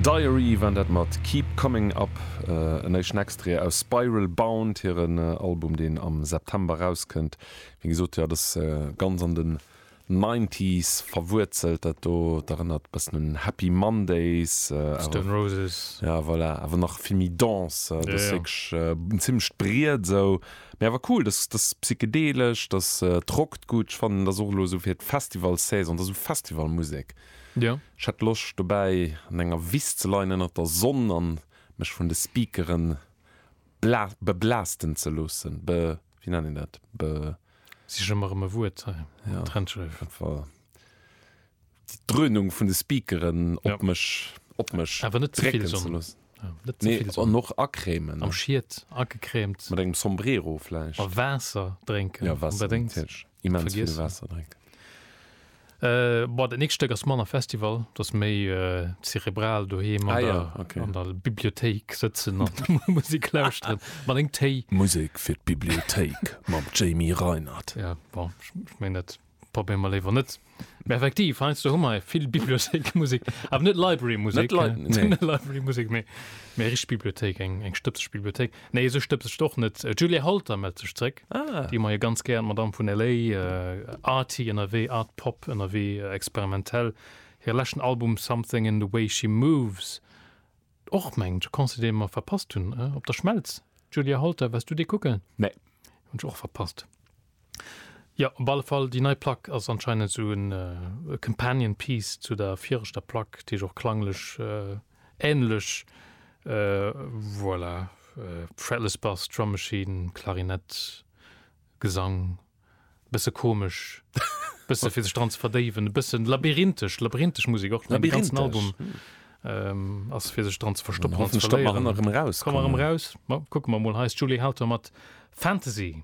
Diary waren dat mat Keep Coming Up. En éischten Extrait aus Spiral Bound, hiren Album, deen am September erauskënnt. Wéi gesot, jo, dat ass ganz an den Nineties verwuerzelt, dat do. Et erënnert e bëssen un Happy Mondays, Stone Roses. Ja, voilà, awer nach vill méi dense. Dat ass wierklech en zimmlecht Briet esou, mee awer cool. Dat ass psychedelesch, dat rockt gutt. Ech fannen, dat ass och elo esou fir d'Festivalsaison, dat ass esou Festivalmusek. Ech hätt Loscht dobäi an enger Wiss ze leien ënnert der Sonn an mech vun de Speakeren beblaaschten ze loossen, be wéi nennt een dat, be. Sich ëmmer erëm e Wuert hei, Trennschärf. Dat war déi Dröhnung vun de Speakeren op mech, op mech drécken ze loossen. Nee, an och acrèmen. Am Schiet agecrèmt. Mat engem Sombrero vläicht. A Waasser drénken. Jo, Waasser, natierlech. Immens vill vergiessen. Waasser drénken. Äh, boah, dat nächst Stéck ass manner Festival, dat ass méi äh, zerebral doheem an, Ah ja, der, okay. an der Bibliothéik sëtzen an Musik lauschteren. Mat engem Téi. Musek fir d'Bibliothéik mam Jamie Reinert. Ja, bon, ech, ech mengen, dat probéiere mer léiwer net. Mä effektiv, heiansdo hu mer vill Bibliothéikmusek, awer net Librarymusek, Net Lib- net nee. Librarymusek, mee méi richteg Bibliothéik, eng eng stëbseg Bibliothéik. Nee, esou stëbseg ass se och net. D'Julia Holter mellt sech zréck, Ah. déi mer jo ganz gär, d'Madame vun LA, äh, arty ënnerwee, art pop ënnerwee, experimentell. Hire leschten Album Something in the way she moves Och mengt Conseil dee mer verpasst hunn op der Schmelz. Julia Holter, wars du dee kucken? Nee. Hunn ech och verpasst. Jo, op alle Fall, déi nei Plack ass anscheinend esou en companion piece zu der viregter Plack, déi ech och klanglech änlech, voilà, Fretless Bass, Drum Machine, Klarinett, Gesang. e bësse komesch, e bësse fir sech dran ze verdéiwen, e bësse labyrinthesch, labyrinthesch Musek och. Den ganzen Album ass fir sech dran ze verstoppen an ze verléieren. Komme mer erëm eraus. Kucke mer emol, hei ass d'Julie Hauter mat Fantasy.